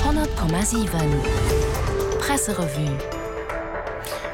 100,7 Presserevue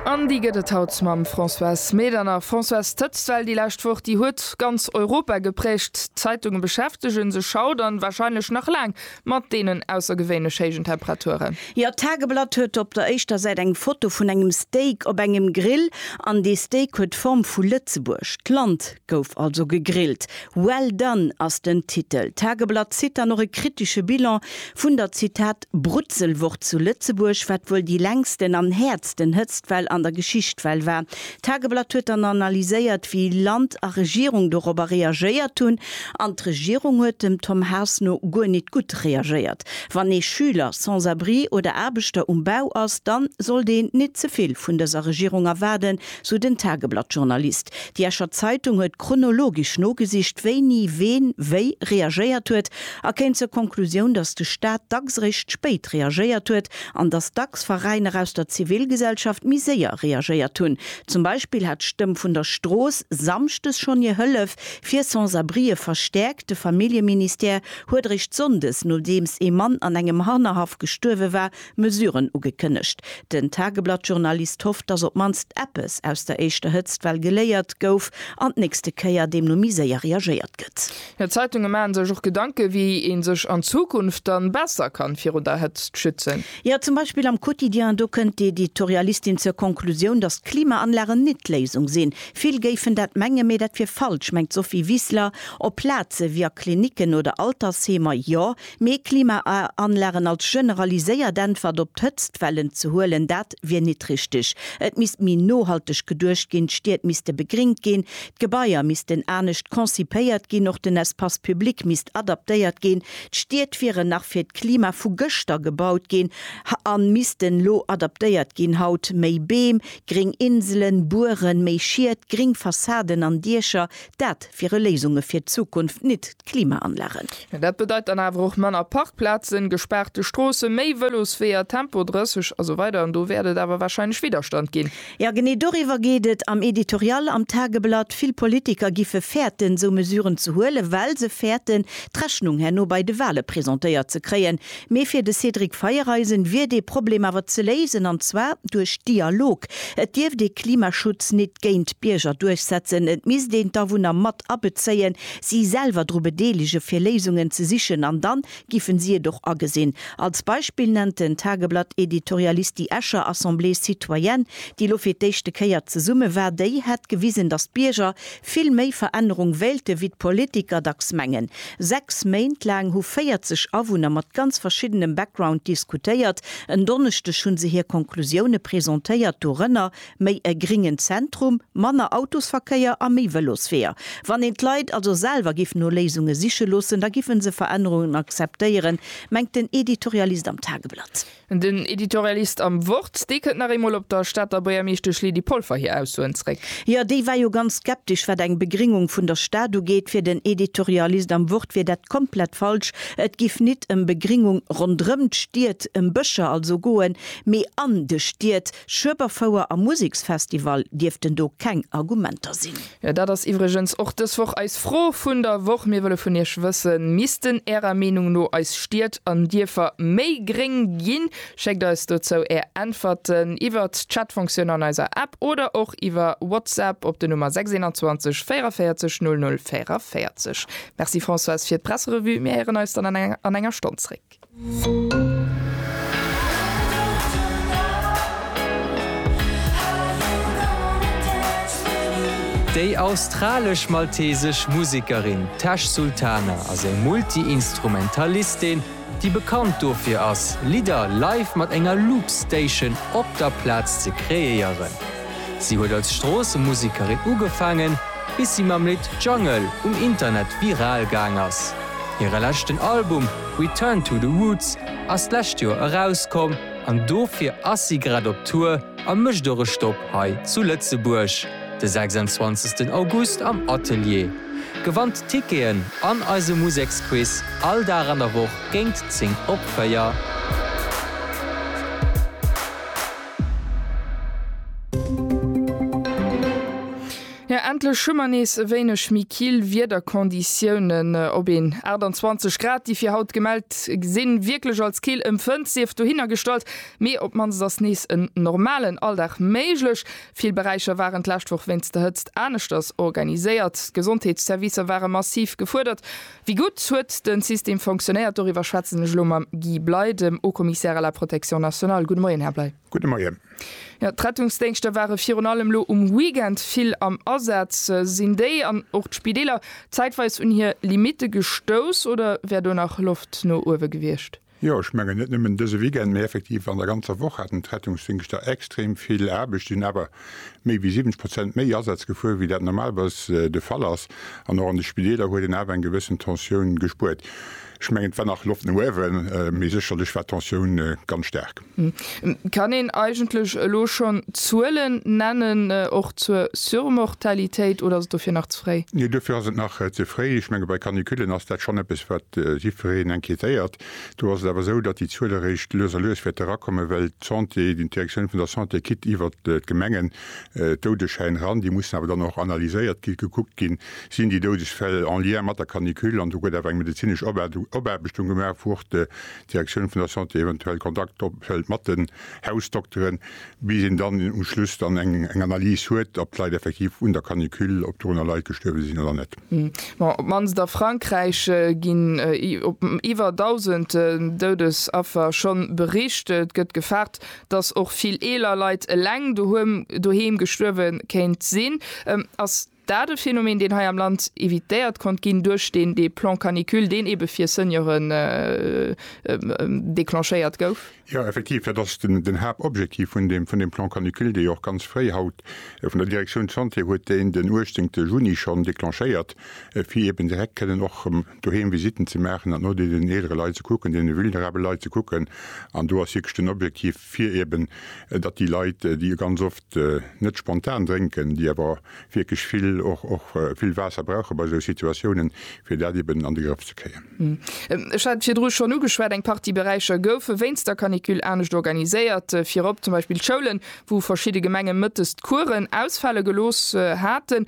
An déi gëtt et haut mam Françoise Medernach. Françoise, d'Hëtztwell déi lescht Woch, déi huet ganz Europa geprägt. D'Zeitunge beschäftege sech haut an warscheinlech nach laang mat deenen aussergewéinlech héijen Temperaturen. Jo, d'Tageblatt huet op der éischter Säit eng Foto vun engem Steak op engem Grill. An dee Steak huet d'Form vu Lëtzebuerg. D'Land Gouf also gegrillt. Well done ass den Titel. D'Tageblatt zitt dann och e kritesche Bilan vun der, Zitat, Brutzelwoch zu Lëtzebuerg, wat wuel déi längsten an häertsten Hëtztwell an der Geschicht well war. D'Tageblatt huet dann analyséiert, wéi Land a Regierung dorobber reagéiert hunn. An d'Regierung huet dem Tom Haas no guer nit gutt reagéiert. Wann ee Schüler, Sans-abri oder Aarbechter um Bau ass, dann sollt een nit ze vill vun dëser Regierung erwaarden, sou den Tageblatt-Journalist. Déi Escher Zeitung huet chronologesch nogesicht, wéini ween wéi reagéiert huet, a kéim zur Konklusioun, datt de Staat dacks eréischt spéit reagéiert huet an datt dacks Veräiner aus der Zivilgesellschaft méi séier reagéiert hunn. Zum Beispill hat d'Stëmm vun der Strooss samschdes schonn hir Hëllef fir Sans-abrieë verstäerkt. De Familljeministère huet eréischt sonndes, nodeems ee Mann an engem Hannerhaff gestuerwe war, Mesuren ugekënnegt. Den Tageblatt-Journalist hofft, datt op d'mannst eppes aus der éischter Hëtzt well geléiert gouf an d'nächste Kéier deemno méi séier reagéiert gëtt. Jo, d'Zeitunge maachen sech och Gedanken, wéi ee sech an Zukunft dann besser kann virun der Hëtzt schützen. Jo, zum Beispill am Quotidien. Do kënnt d'Editorialistin zur Konklusioun, datt Klimaanlagen nit d'Léisung sinn. Vill géifen dat mengen, mee dat wier falsch, mengt d'Sophie Wiseler. Op Plaze wéi a Klinicken oder Altersheemer jo, Mee Klimaanlagen als generaliséiert Äntwert op d'Hëtztwellen ze huelen, dat wier nit richteg. Et misst méi nohalteg geduecht ginn, d'Stied misste begringt ginn, d'Gebaier missten anescht concipéiert ginn, och den Espace public misst adaptéiert ginn. D'Stied wieren nach fir d'Klima vu gëschter gebaut ginn a missten lo adaptéiert ginn haut, méi Beem, gring Inselen, Bueren, méi Schied, gring Fassaden an Diecher, dat wiere Léisunge fir d'Zukunft, nit. Klimaanlagen. Dat bedeit dann awer och manner Parkplazen, gespaarte Stroossen, méi Vëlosweeër, Tempo 30 a sou weider an do wäert et awer warscheinlech Widderstand ginn. Jo, genee doriwwer geet et am Editorial am Tageblatt. Vill Politiker giffe fäerten, esou Mesuren ze huelen, well se fäerten, d'Rechnung herno bei de Wahle presentéiert ze kréien. Mee fir de Cédric Feiereisen wier dee Problem awer ze léisen, an zwar duerch Dialog. Et dierft ee Klimaschutz nit géint d'Bierger duerchsetzen, et misst een d'Awunner mat abezéien. si selwer dru bedeelegen, fir Léisungen ze sichen an dann giffen si et och agesinn. Als Beispill nennt den Tageblatt Editorialist déi Escher Assemblée citoyenne, déi lo fir d'éischte Kéier zesumme war, déi hätt gewisen, datt d'Bierger vill méi Verännerung wéilte wéi d'Politiker dacks mengen. Sechs Méint laang hu 40 Awunner mat ganz verschiddenem Background diskutéiert. En Donneschdeg hu se hir Konklusioune presentéiert, dorënner Méi e gringen Zentrum, manner Autosverkéier a méi Vëlosweeër. Wann een d'Leit also selwer giff no Léisunge siche loossen, da giffen se Verännerungen akzeptéieren, mengt den Editorialist am Tageblatt. Den Editorialist am Wort, dee kënnt nach eemol op der Stater Buergermeeschtesch Lydie Polfer hir Aussoen zréck. Jo, déi war jo ganz skeptesch, wat eng Begringung vun der Stad ugeet. Fir den Editorialist am Wort wier dat komplett falsch. Et giff nit ëm Begringung ronderëm d'Stied, ëm Bëscher also goen, mee an de Stied. Schueberfouer a Museksfestival dierften do keng Argumenter sinn. Jo, dat ass iwwregens och dës Woch eis Fro vun der Woch. Mir wëlle vun Iech wëssen, Missten Ärer Meenung no eis Stied an Dierfer méi gréng ginn? Schéckt eis dozou Är Äntwerten iwwer d'Chatfonctioun an eiser App oder och iwwer WhatsApp op den Nummer 621 44 00 44. Merci Françoise fir d'Presserevue. Mir héieren eis dann an enger Stonn zréck. Musek. Déi australesch-maltesesch Musekerin Tash Sultana ass eng Multi-Instrumentalistin, déi bekannt dofir ass, Lidder live mat enger Loop Station op der Plaz ze kreéieren. Si huet als Stroossemusekerin ugefaangen, bis si mam Lidd Jungle um Internet viral gaang ass. Hire leschten Album Return to the Roots ass d'lescht Joer erauskomm an dofir ass si grad op Tour a mécht och e Stopp hei zu Lëtzebuerg de 26 August am Atelier. Gewannt d'Ticketen an eise Museksquiz all Dag an der Woch géint 10 op 4. Jo endlech hu mer nees e wéineg méi kill Wiederkonditiounen. Op een 28 Grad, déi fir haut gemellt sinn, wierklech als kill empfënnt, sief dohinnergestallt, mee op mannst ass nees en normalen Alldag méiglech. Vill Beräicher waren d'lescht Woch wéinst der Hëtzt aneschters organiséiert. D'Gesondheetsservicer ware massiv gefuerdert. Wéi gutt huet de System fonctionéiert? Doriwwer schwätzen ech elo mam Guy Bley, dem Haut-Commissaire à la Protection nationale. Gudde Moien, Här Bley. Gudde Moien. Jo, d'Rettungsdéngschter ware virun allem elo um Weekend vill am Asaz. Sinn déi an och d'Spideeler zäitweis un hir Limitte gestouss oder wär do nach Loft no uewe gewiescht? Jo, ech mengen net nëmmen dëse Weekend, mee effektiv an der ganzer Woch haten d'Rettungsdéngschter extrem vill Aarbecht, sinn awer méi wéi 70 Prozent méi Asätz gefuer, wéi dat normalerweis de Fall ass. An och an de Spideeler huet een awer eng gewëssen Tensioun gespuert. Ech mengen, et war nach Loft no uewen, mee sécherlech war d'Tensioun ganz staark. Kann een eigentlech elo schonn Zuelen nennen, och zur Surmortalitéit, oder ass et dofir nach ze fréi? Nee, dofir ass et nach ze fréi. Ech menge bei Canicullen ass dat schonn eppes, wat jiddwereen inquiétéiert. Do ass et awer esou, datt déi Zuel eréischt lues a lues wäerte erakommen, well d'Santé, d'Direktioun vun der Santé kitt iwwert d'Gemengen d'Doudeschäin ran. Déi mussen awer dann och analyséiert ginn, gekuckt ginn, sinn déi Doudesfäll en lien mat der Canicule, an do gëtt awer eng medezinesch Opaarbechtung gemaach, wou och D'Direktioun vun der Santé eventuell Kontakt ophëlt mat den Hausdokteren, bis een dann um Schluss dann eng Analys huet, ob d'Leit effektiv un der Canicule, ob dorunner Leit gestuerwe sinn oder net. Bon, op d'mannst a Frankräich ginn op iwwer 1.000 Doudesaffer schonn bericht. Et gëtt gefaart, dass och vill eeler Leit eleng doheem gestuerwe kéint sinn. Ass Dat e Phänomen, deen hei am Land evitéiert konnt ginn duerch deen dee Plan canicule, deen ebe fir Senioren declenchéiert gouf. Jo, effektiv, dat ass den Haaptobjektiv vun deem Plan canicule, dee jo och ganz fréi haut vun der Direktioun Santé, huet deen den 18 Juni schonn declenchéiert, fir eben direkt kënnen och doheem Visitten ze maachen an no deenen eelere Leit ze kucken, deene vulnerabele Leit ze kucken. An do ass wierklech den Objektiv, fir eben datt déi Leit, déi ganz oft net spontan drénken, déi awer wierklech vill och och vill Waasser brauche bei esou Situatiounen, fir dat eben an de Grëff ze kréien. Ech hat et virdru schonn ugeschwat, eng Partie Beräicher goufe wéinst der Canicule anescht organiséiert, virop zum Beispill d'Schoulen, wou verschidde Gemenge mëttes d'Kueren ausfale gelooss haten.